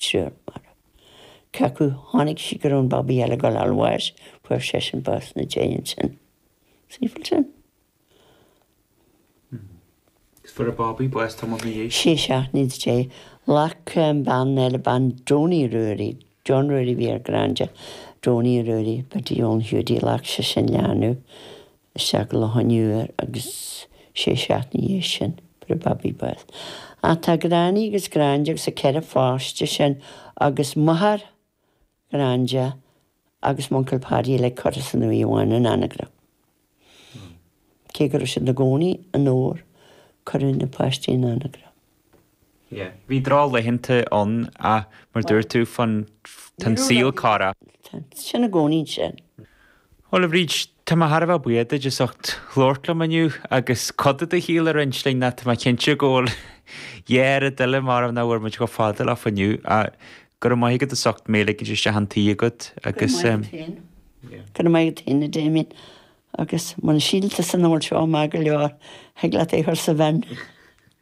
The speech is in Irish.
triúr marbh. Cé acu tháinig siad go raibh an babaí eile ag gabháil a fháil bháis, fuair seisean bás ina dhiaidh ansin. Simple sin. Is fuair an babaí bás tamall ina dhiaidh. Sé seachtaine ina dhiaidh. Ghlac an bhean eile, bean Donie Ruairí, John Ruairí a bhí ar Granda, Donie Ruairí, Paidí Eoin Hiúdaí, ghlac sise an leanbh. Isteach leofa i nDobhar agus sé seachtaine ina dhiaidh sin fuair an babaí bás. Ach tá Granny agus Granda agus a ceithre pháiste sin agus máthair Ghranda agus m'uncail Paddy uilig curtha san uaigh amháin in Anagaire. Cé go raibh siad ina gcónaí i nDobhar cuireadh na páistí in Anagaire. yeah bhí drochlaethanta ann ach mar a dúirt tú féin tá an saol cá raibh. sin i gcónaí sin. Bhuel a Bhríd, tá mé thar a bheith buíoch duit as ucht labhairt liom inniu agus cuid de do shaol a roinnt linn ach tá mé cinnte go bhfuil yeah rudaí eile marbh nach bhfuair muid chomh fada leofa inniu ach go raibh maith agat as ucht mé a ligint isteach chun tí agat agus go raibh maith agat féin go raibh maith agat féin a Damien agus muna síltear san ord seo maith go leor thig leat é a chur sa bhin.